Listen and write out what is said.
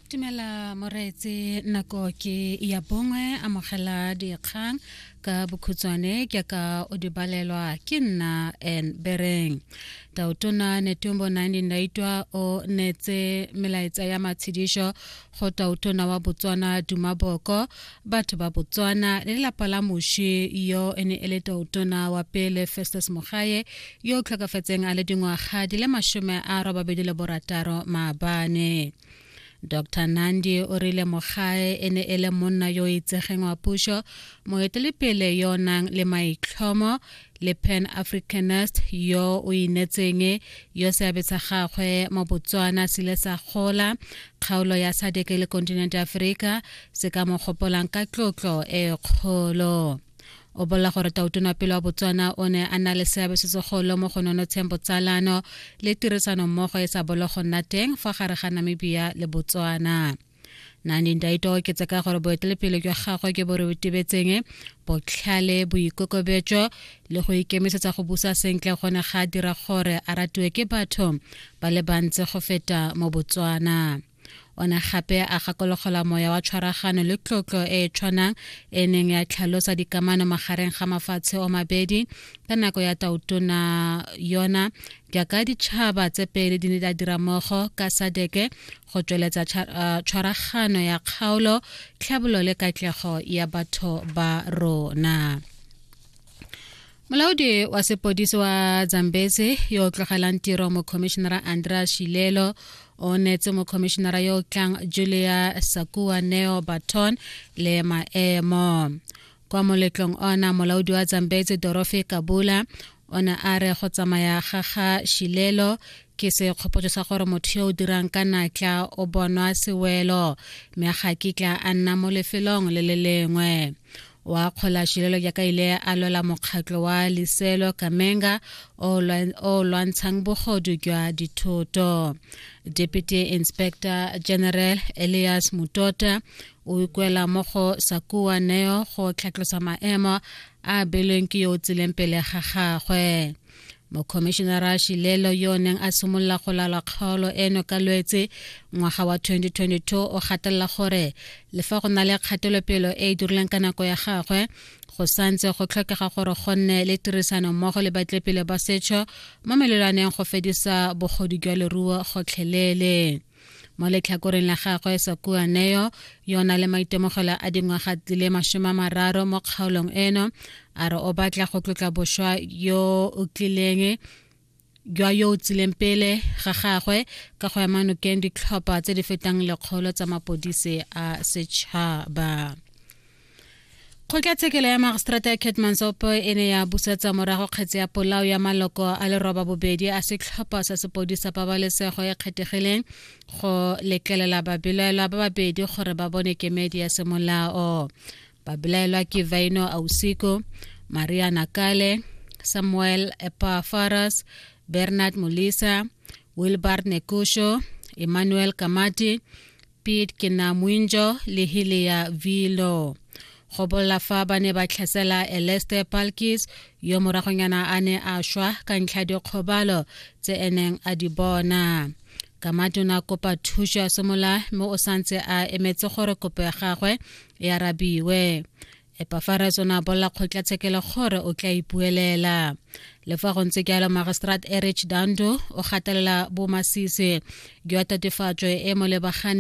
Tumela moreetse nako ke ya bongwe amogela dikgang ka bokhutswane ke ka o di balelwa ke nna en bereng tautona netumbo nandi ndaitwa o netse melaetsa ya matshedišo go tautona wa botswana dumaboko batho ba botswana le lelapa la moši yo e ne e le toutona wa pele festus mogaye yo o tlhokafetseng a le dingwaga di le masome a robabedi le borataro maabane dr nandi o rile mogae e ne e le monna yo itsegeng wa pušo moetelepele yo o nang le maitlhomo le pan africanist yo o inetseng yo seabe sa gagwe mo botswana se ile sa gola kgaolo ya sadeke le continent africa se ka mo gopolang ka tlotlo e kgolo o bolela gore tautona pele wa botswana o ne a na le seabe se segolo mo go nonotsheng botsalano le tirisano mmogo e sa bolo go nna teng fa gare ga namibia le botswana nandi ndaito o oketse ka gore boetelepele jwa gagwe ke bo re botebetseng botlhale boikokobetso le go ikemisetsa go busa sentle go ne ga dira gore a ratiwe ke batho ba le bantsi go feta mo botswana o ne gape a gakologelwa moya wa tshwaragano le tlotlo e e tshwanang e neng ya tlhalosa dikamano magareng ga mafatshe o mabedi ka nako ya tautona yona jaaka ditšhaba tse pedi di ne di dira mmogo ka sadeke go tsweletsa uh, tshwaragano ya kgaolo tlhabolo le katlego ya batho ba rona molaodi wa sepodisi wa zambezi yo o tlogelang tiro mokhomišenara andrea shilelo o neetse mokhomišenara yo o tlang julia sakua neo baton le maemo kwa moletlong ona molaodi wa zambezi dorofe kabula o ne a re go tsamaya ga ga shilelo ke sekgopotso sa gore motho yo o dirang ka natla o bonwa sewelo mme ga kitla a nna mo lefelong le le lengwe wa akgola šilelo jaaka ile a lwela mokgatlo wa liselo kamenga o lwantshang bogodu jwa dithoto deputy inspector general elias mutota o ikwela mo go sakua neo go tlhatlosa maemo a belweng ke yo o tsileng pele ga gagwe mokhomišenara shilelo yo o neng a simolola go lala kgaolo eno ka lwetse ngwaga wa 2022 o gatelela gore le fa go na le kgatelopelo e e dirileng ka nako ya gagwe go santse go tlhokega gore go nne le tirisano mmogo le batlepele ba setšho mo melelwaneng go fedisa bogodu jwa leruo gotlhelele mo letlhakoreng la gagwe sakuaneo yona le maitemogelo a dingwaga di le masome a mararo mo kgaolong eno a re o batla go tlotla boswa yo o tlileng jwa yo o tsileng pele ga gagwe ka go ema nokeng ditlhopha tse di fetang lekgolo tsa mapodisi a setšhaba kgotlatshekelo ya magistrata ya ketmansop e ne ya busetsa morago kgetse ya polao ya maloko a leroba bobedi a setlhopha sa sepodisa pabalesego e kgethegileng go letlelela babelaelwa ba babedi gore ba bone kemedi ya semolao babelaelwa ke vaino ausiko maria nakale samuel epafaras bernard molisa wilbard nekusho emmanuel kamati pit ke na muinjo le hile ya vilo go bolla fa ba ne ba tlhasela eleste palkis yo moragonyana a ne a shwa ka ntlha dikgobalo tse eneng a di bona ka matona kopa thuso ya semola mo o santse a emetse gore kopo ya gagwe e arabiwe epafaras o ne a bolela kgotlatshekelo gore o tla ipuelela le fa go ntse jalo magistrat erich dando o gatelela bomasisi jwa tatofatso e mo lebagane